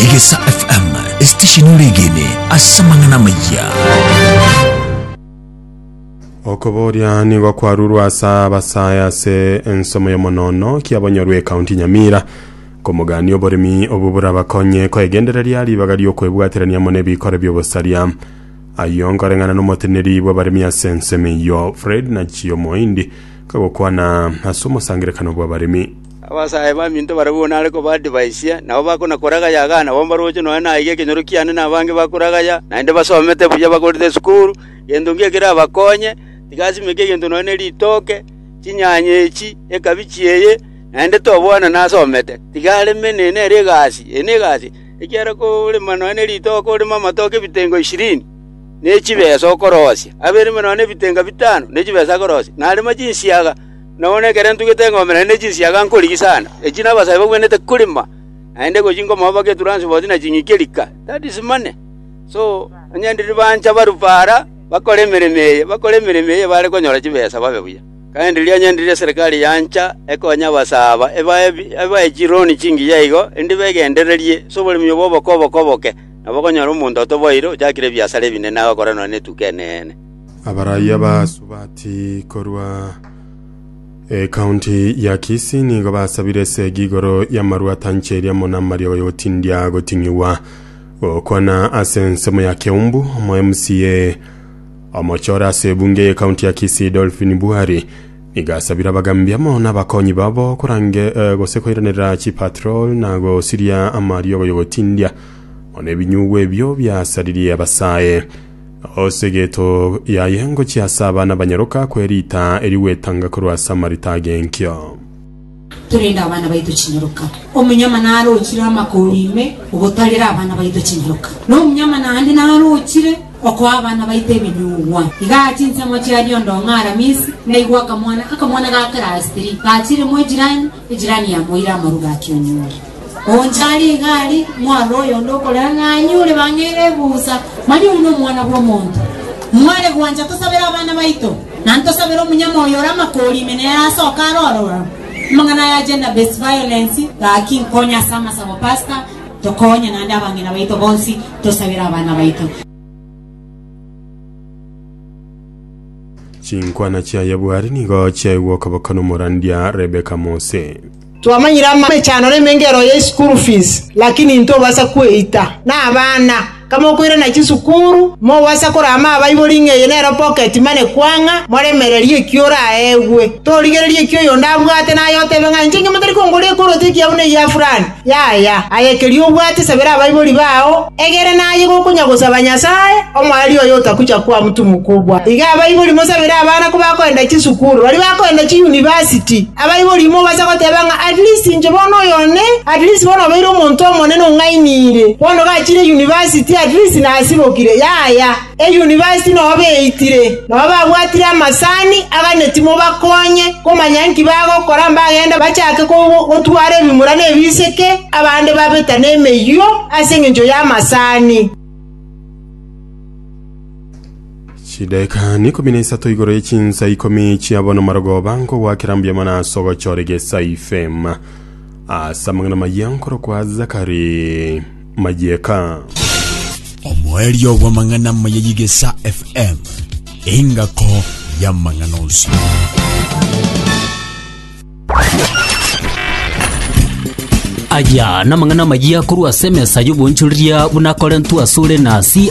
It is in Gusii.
Egesa FM, esitesheni ore egene ase amang'ana amaya. Okoboria nigo kwarurwa ase abasae ase ensomo y'omonono kiabonyorwe ekaunti Nyamira komogania oboremi obo burabakonye koegendereria ribaga riokwebwaterania mono ebikoro biobosaria ayio nkoreng'ana nomoteneri bw'abaremi ase ensemo eyio Fred Nachio Moindi kagokwana ase omosangerekano bw'abaremi Abasae baminto baria bono are kobaadivaisia, nabo bakona koragaya agana bono mbaroche nonya naige ekenyoro kiane na abange bakoragaya, naende basomete buya bakorete esukuru, gento inki ekerabakonye, tigasimeka egento nonya ne ritooke, chinyanya echi, ekabichi eye, naende tobwana nasomete. Tiga areme nere nere egasi, eye negasi, ekiagera korema nonya ne ritooke oreme amatoke ebitengo ishirini, ne chibesa okorosia, abereme nonya ne ebitenga bitano ne chibesa akorosia, narema chinsiaga, Nonya nekero ntugete eng'ombe naende ne chinsiaga nkorigia sana, echi nabasae bagwenerete korema, naende gochia nkomoa mpaka etranspoti na ching'iki rika, that is money. So, onye riria bancha barufe ara bakore emeremo eye, bakore emeremo eye bare konyora chibesa babe buya. Kandi riria onye riria eserikari yancha ekonye abasae aba ebae ebae chironi chingiya igo, erinde begendererie ase oboremi obo oboke oboke oboke, nabo okonyora omonto otoboire ochakire ebiasara ebinene agakora nonya netuko eneene. Abaraiyo abasubati korwa ekaunti ya Kisii nigo basabire esegi igoro y'amarua atancheria mono amariogo y'ogotindia goting'igwa gokwana ase ensemo ya Keumbu. Omo MCA omochore ase ebunge y'ekaunti ya Kisii Dolphin Buhari nigo asabire abagambia amo n'abakonyi babo korange eh, gose koiraneria chipatrol na gosiria amariogo y'ogotindia mono ebinyugwa ebio biasaririe abasae. Ase egeto yaye ngochia ase abana banyaroka kwe riita erio gwetanga korwa ase amarita agenkio. Torende abana baito chinyaroka. Omonyama narochire amakori ime ogotarera abana baito chinyaroka, na omonyama naende narochire okoa abana baito ebinyugwa. Igaa chinsemo chia Liondo ng'a Aramisi naigwa akamwana, akamwana ga Kerastiri, gachire mwe jirani, Ejirani ya moira amaru gaki onyuure. Oonchare egari, mware oyonde okorera ng'a anyuure bang'eire ebusa. Mani oyio nomwana bw'omonto. Mware gwancha tosabere abana baito, na ntosabere omonyama oyo ore amakori ime nere asoke are ororo. Amang'ana aya a gender based violence gaki nkonye ase amasabo pastor, tokonye naende abang'ina baito bonsi tosabere abana baito. Chinkwana chiaye bwari nigo chiaigwa okoboko nomorandia Rebeka Mose. Twamanyire amechano na emengero ye school fees, lakini intobasa kweita. Na abana, kamokoirana chisukuru, mobasa korama abaibori ng'a eye nero pocket money kwang'a, moremererie ekio oraegwe. Torigereria ekio oyonde abwate naye otebe ng'a inche inche motari kongoria ekoroto ekiya buna egia fulani. Yaya, aye keria obwate sabera abaibori bao, egere naye gokonyagosaba Nyasae, omoerio oye otakucha kwamutumokwa obwate. Iga abaibori mosabere abana kobakoenda chisukuru, baria bakoenda chiyunivasiti. Abaibori imo obase goteba ng'a at least inche bono oyo one, at least bono obeire omonto omonene ong'ainire. Bono gachire yunivasiti at least nasibokire. Yaya. Eyunivasiti nao beitire, nao babwatire amasani aganeti mobakonye komanya inki bagokora mbagende bachake gotwara ebimura na ebiseke, abande babeta nemeyio ase engencho y'amasani. Chidaeka ikomi na isato igoro ye chinsa ikomi chia bono marogoba nkogwakera mbuya mono ase ogochora egesaife ase amang'ana maya nkorokwa Zakari. mayieka. Omoerio bw'amang'ana amaya y'Igesa FM, engako y'amang'ana onsi. Aya namang'ana amayia korwa ase emesa y'obonchoreria buna akorentwe asore na CI